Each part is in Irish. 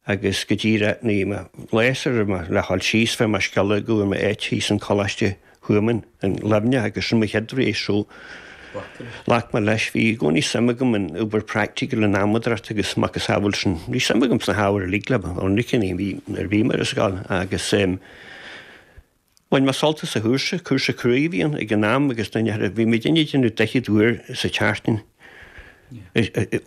agus go díreach bhí mé gléasta réidh le ghabháil síos fuair mé scéala go bhfuair mé áit thíos in Coláiste Thuamhan in Luimneach agus sin mo chéad rogha so. Ghlac mé leis, bhí i gcónaí suim agam in obair praiticiúil in adhmadracht agus macasamhail sin. Bhí suim agam sna hábhair uilig le bheith ionraice nuair a bhí mé ar scoil agus, Bhain mé sult as an chúrsa. Cúrsa cruaidh a bhí ann ag an am agus duine thar a, bhí muidinne ag déanamh daichead uair sa tseachtain,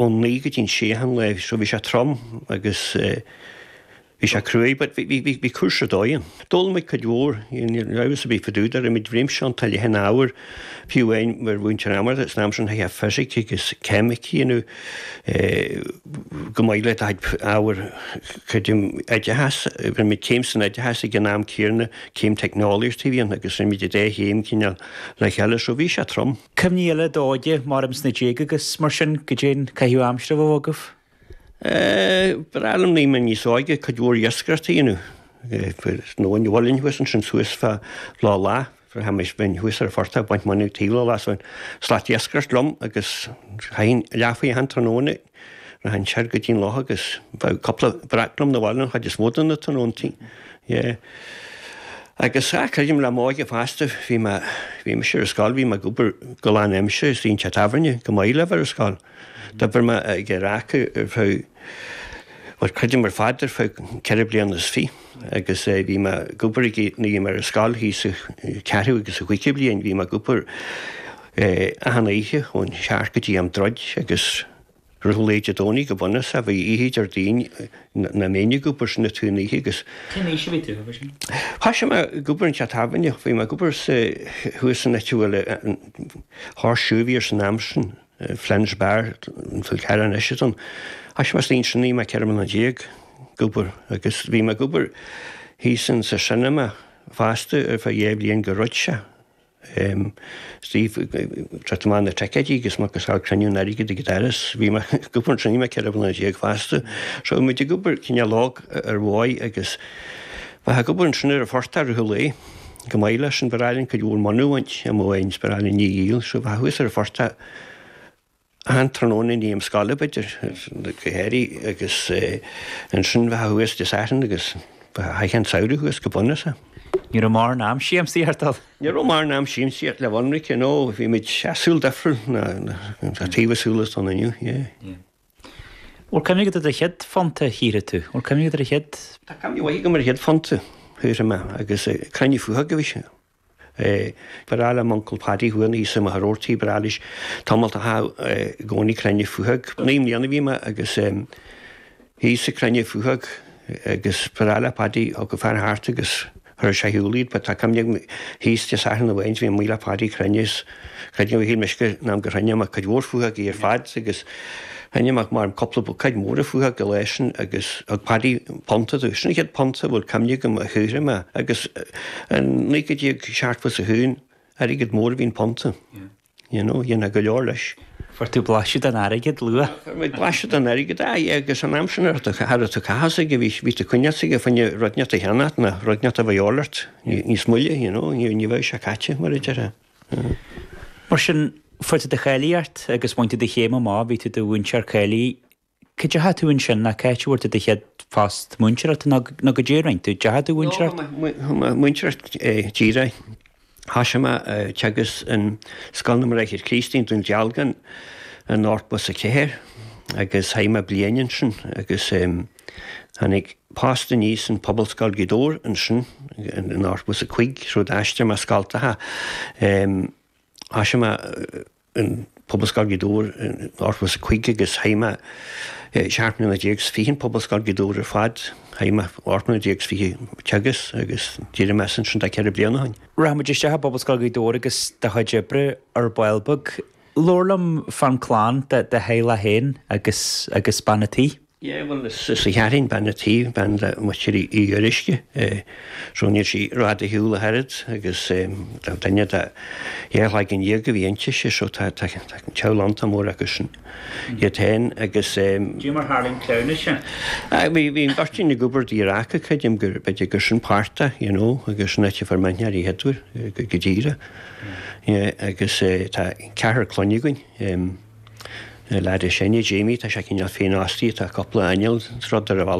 ón naoi go dtí an sé achan lá, so bhí sé trom agus bhí sé cruaidh but bhí, bhí, bhí, bhí cúrsa ar dóigh ann. D'fhoghlaim muid cuid mhór, you know, I was a bit fadúda, rinne muid réimse iontach leathan ábhar, fiú amháin mar mhúinteoir adhmadracht san am sin, chaithfeá fisic agus ceimic, you know. chomh maith le do chuid ábhar creidim oideachas rinne muid céim san oideachas ag an am céarna céim teicneolaíocht a bhí ann agus rinne muid an dá chéim cineál le chéile so bhí sé trom. Cuimhní eile de d'óige abraimis sna déaga agus mar sin goidé an caitheamh aimsire a bhíodh agaibh? Ba ghnách liom nuair a bhí mé níos óige cuid mhór iascaireachta a dhéanamh nó bhuailinn thuas ansin suas fá lá lá. Bhraitheamaís bhínn thuas ar an phortach ag baint mónadh taobh leis ansin. Slat iascaireacht liom agus chaithfinn leathuair achan tráthnóna ag rith ansin go dtí'n loch agus bheadh cúpla breac liom na bhaile an chuid is mó de na tráthnóntaí. Yeah. Agus ah, creidim le m'óige fosta bhí mé, bhí mise ar scoil, bhí mé ag obair go lán aimsire ins an teach tábhairne chomh maith le bheith ar scoil. D'obair mé ag radharc ar feadh, bhuel creidim ar fad ar feadh ceithre bliana is fiche. agus bhí mé ag obair ag, bhí mé ar scoil thíos sa ceathrú agus sa gcúigiú bliain, bhí mé ag obair achan oíche ón seacht go dtí am druid agus rith lae Dé Domhnaigh go bunúsach, bhí oíche Déardaoin nach mbínn ag obair sin an t-aon oíche agus. Cén aois a bhí tú, mar sin? Thoisigh mé ag obair in teach tábhairne, bhí mé ag obair sa, thuas san áit a bhfuil an, Horseshoe a bhí air san am sin. Flynn's Bar an Fhál Carraigh anois atá ann. Thoisigh mé ansin nuair a bhí mé ceithre bliana déag ag obair agus bhí mé ag obair thíos san sa cinema fosta ar feadh dhá bhliain gur dhruid sé. Ag tabhairt amach na ticéidí agus muc agus fear cruinniú an airgid ag an doras. Bhí mé ag obair ansin nuair a bhí mé ceithre bliana déag fosta. So bhí muid ag obair cineál óg ar dhóigh agus bheifeá ag obair ansin ar an phortach a thuilleadh. Chomh maith leis sin ba ghnách linn cuid mhór mónadh a bhaint, I mean, ba ghnách linn í a dhíol, so bheifeá thuas ar an phortach achan tráthnóna i ndiaidh am scoile, b'fhéidir, go háirithe agus ansin bheifeá thuas Dé Sathairn agus bheifeá achan tsamhradh thuas go bunúsach. Ní raibh mórán am siamsaíochta ann? Ní raibh mórán am siamsaíochta le bheith ionraice, no, bhí muid, sea, saol difriúil le taobh an tsaoil atá ann inniu, yeah. Or can we get the chéad phonta thíre too? Or can we get the chéad. Tá caimín uaidh agam ar chéad phonta thíre mé agus cainní fúthu agaibh is ea. Ba bhreá liom Uncle Paddy who ina aois i mo shaortí, ba bhreá leis tomhailt a chaitheamh i gcónaí crainn fúthu agaibh. Naoi mbliana a bhí mé agus aois ag crainn fúthu agaibh agus ba bhreá le Paddy thug a fear thart agus. Chuirfeadh sé ar shiúl iad but tá cuimhne agam thíos Dé Sathairn amháin bhí mé amuigh le Padaí ag cruinniú is creidim gur shíl mise an t-am gur chruinnigh mé cuid mhór faochóg ar fad agus chruinnigh mé maram cúpla buicéad mór faochóg an lá sin agus thug Padaí punta domh. Sin an chéad phunta a bhfuil cuimhne agam a shaothraigh mé agus i 1971 airgead mór a bhí an punta. You know, dhéanfá go leor leis. Fuair tú blaiseadh den airgead luath. Fuair muid blaiseadh den airgead, aye, agus an t-am sin ar ndóigh, cha raibh tú ag caitheamh an airgid, bhí, bhí tú ag coinneáilt an airgid fá choinne rud inteacht a cheannacht, nó rud inteacht a bheadh a dhíobháil ort níos moille, you know, ní, ní bheadh sé caite, mar a déarfá. Mar sin, fuair tú do cháilíocht agus bhain tú do chéim amach, bhí tú i do mhúinteoir cáilithe. Cá deachaigh tú ansin? Nó cá háit a raibh do chéad phost múinteoireachta nó go díreach an deachaigh tú a mhúinteoireacht? Ó, chuaigh mé a mhúinteoireacht díreach. Thosaigh mé ag teagasc in Scoil na mBráithre Críostaí i nDún Dealgan in 84 agus chaith mé bliain ansin agus tháinig post aníos in Pobalscoil Ghaoth Dobhair ansin in 85 rud a d'aistrigh mé scoltacha. Thosaigh mé. in Pobalscoil Ghaoth Dobhair in 85 agus chaith mé 17 mbliana is fiche in Pobalscoil Ghaoth Dobhair ar fad. Chaith mé 18 mbliana is fiche ag teagasc agus d'éirigh mé as ansin tá ceithre bliana ó shin. Rachaidh muid isteach i bPobalscoil Ghaoth Dobhair agus do chuid oibre ar ball beag. Labhair liom fán chlann, do theaghlach féin agus bean an tí. Yeah bhuel is í Kathryn bean an tí, bean de Mhuintir Uí Fhioruisce, so níl sí rófhada ar shiúl ach oiread agus tá duine de theaghlach dáréag a bhí inti siad so tá teaghlach iontach mór acu sin iad féin agus. Caidé mar tharla an cleamhnas a. Aye bhí bhí an gairtín ag obair do dheartháir aici creidim gur b'fhéidir gur sin páirt de you know agus sin áit a fuair mé aithne ar Éadbhard go díreach yeah agus tá ceathrar clainne againn. Lad is sine Jamie tá sé cineál féinfhostaithe tá cúpla inneall rud ar an bhealach.